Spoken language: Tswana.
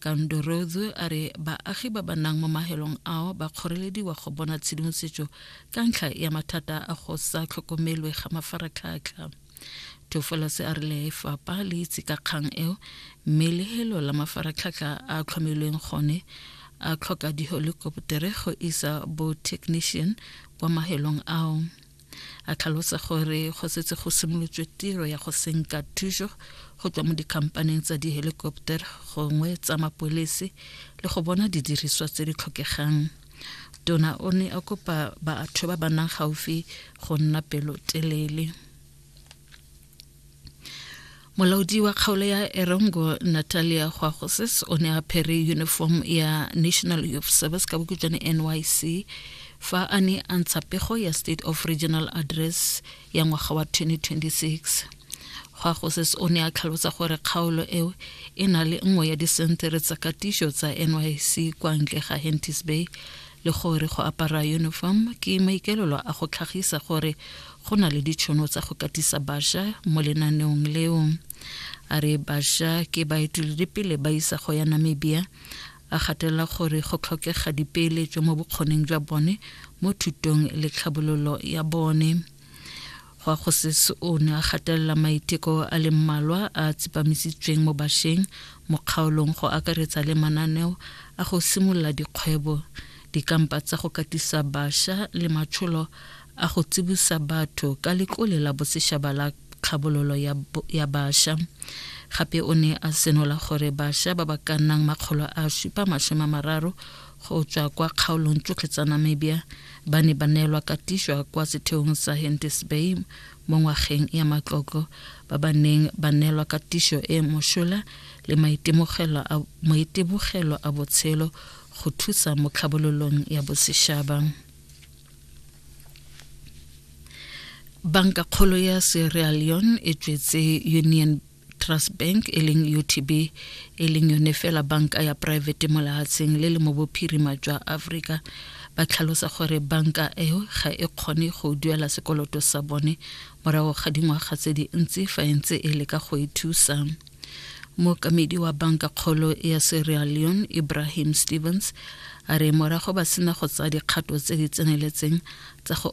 Kandorotho a re baagi ba ba nang mo mahelong ao ba kgorelediwa go bona tshedimosetso ka ntlha ya mathata a go sa tlhokomelwe ga mafaratlhatlha tofolase a re lefapa le itse ka kgang eo mme lehelo la mafaratlhatlha a tlhomilweng gone a tlhoka dihelikoptere go isa bo-technician kwa mahelong ao a tlhalosa gore go setse go simolotswe tiro ya go senka thuso go tswa mo dikhampaneng tsa dihelikoptera gongwe tsa mapolese le go bona didiriswa tse di tlhokegang tona o ne a kopa batho ba ba nang gaufi go nna pelotelele molaodi wa kgaolo ya erongo natalia gwagosis o ne a phere uniform ya national youth service ka bokutswane nyc fa a ne a ntsha pego ya state of regional address ya ngwaga wa 2026 gwagosis o ne a tlhalosa gore kgaolo eo e na le nngwe ya disentere tsa katiso tsa nyc kwa ntle ga hentis bay le gore go apara uniform ke maikelelo a go tlhagisa gore go na le ditšhono tsa go katisa basha mo lenaneong leo a re basha ke baeteledipele ba isa go ya namibia a gatelela gore go tlhokega dipeeletso mo bokgoneng jwa bone mo thutong le tlhabololo ya bone Gwa Kgosese o ne a gatelela maiteko a le mmalwa a a tsepamisitsweng mo basheng mo kgaolong go akaretsa le mananeo a go simolola dikgwebo, dikampa tsa go katisa basha le matsholo a go tsibusa batho ka letlole la boseshaba la kgabololo ya, ya basha. Gape o ne a senola gore basha ba ba ka nnang makgolo a supa masome a mararo go tswa kwa kgaolong tsotlhe tsa namibia ba ne ba neelwa katiswa kwa setheong sa hentis bay mo ngwageng ya matlotlo ba ba neng ba neelwa katiso e mosola le maitebogelo a botshelo go thusa mo tlhabololong ya bosešaba banka kgolo ya sierra leone e tswetse union trust bank e leng utb e leng yone fela banka ya private mo lehatsheng le le mo bophirima jwa africa ba tlhalosa gore banka eo ga e kgone go duela sekoloto sa bone morago ga dingwaga tse dintsi fa e ntse e leka go e thusa mookamedi wa banka kgolo ya sierra leone ibrahim stevens a re morago ba sena go tsaya dikgato tse di tseneletseng tsa go